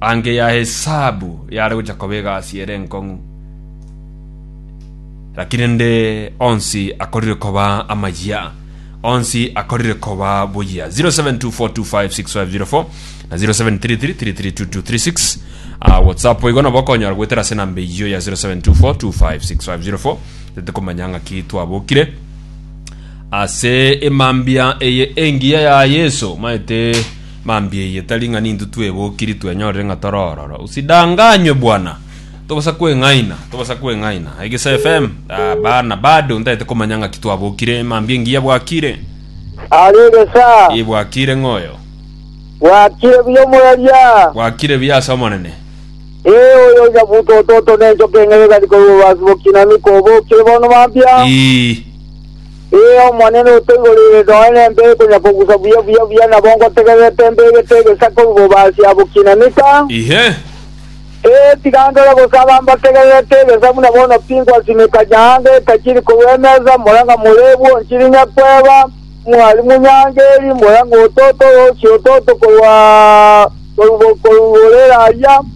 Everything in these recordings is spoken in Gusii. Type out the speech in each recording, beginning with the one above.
Ange ya hesabu yare gocha koba egasi ere enkong'u, lakini nde onsi akorire koba amayia onsi akorire koba boyia 0724256504 na 0733332236 uh, whatsapp igo nabo okonyora gwetera ase namba eyiyo ya 0724256504 tete komanya ng'aki twabokire ase emambia eye engiya ya yesu maete Mambia eye tari ng'a ninto twebokiri twenyorire ng'a tore ororo. Usidanganywe bwana. Tobosa kweng'aina, tobosa kweng'aina. Egeso FM, ah, bana bado ntaete komanya ng'aki twabokire. Mambia engiya bwakire. Are gesa. Ii bwakire ng'oyo. Bwakire buya omweria. Bwakire buya ase Omonene. Ee oyo iga buto ototo nenchoka eng'ai egari korwa obasi bokina niko obokire bono mambia. Ii. Ee, Omonene otoigoreire noe nembeo ekonyakogusa buya buya buya, nabo ngotegererete embeo egete egesaku oboba ase yabo kinanika. Inhe! Ee, tiga ndore gose aba mbategererete egesaku, na bono pi ngwasimeka nyaange etajiri korwa emesa, mora ng'a morebu onchirinya kweba, Mwalimu, nyaange eri, mora ng'otote oroosi ototo korwa igoro rere ayia.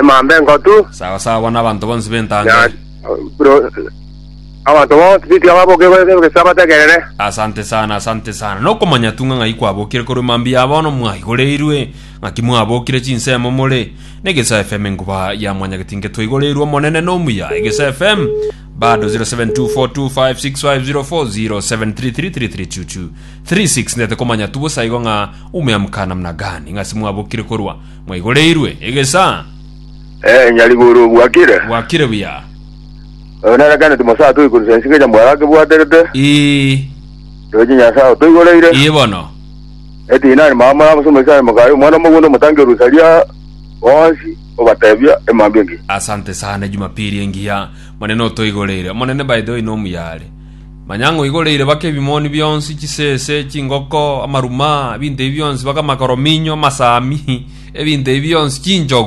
emambe engotu, Sawa sawa, bono abanto bonsi b'entanga na eye. bro- abanto bonsi bitika baboke gesa bategerere. Asante sana, asante sana. Nokomanya tung'a ng'ai kwabokire korwa emambia ya bono mwaigoreirwe, ng'aki mwabokire chinsemo more na Egesa FM enkuba ya mwanyagetinke twaigoreirwe omonene nomuya Egesa FM bado 0724256504 0733332236 ndete komanya tu bosa igo ng'a umeamka namna gani ng'asi mwabokire korwa Mwaigoreirwe egesaa. Ee, nyarigoro, gwakire. Gwakire buya. Oyo nere kende timosato oikorusia ense keria mwaro akebwaterete. Ii. Roche Nyasae otoigoreire. Ii bono. Eti inani mama moraba ase omoisraeli mokaye omwana omogwende omotangi orusaria bonsi obatebia emambia engiya. Asante sana Jumapili engiya. Monene otoigoreire. Omonene by the way nomuyare. Manya ng'a oigoreire bake ebimoni bionsi, chisese, chingoko, amaruma, ebinto ebi bionsi, bake amakorominyo, amasaami, ebinto ebi bionsi, chinchogu.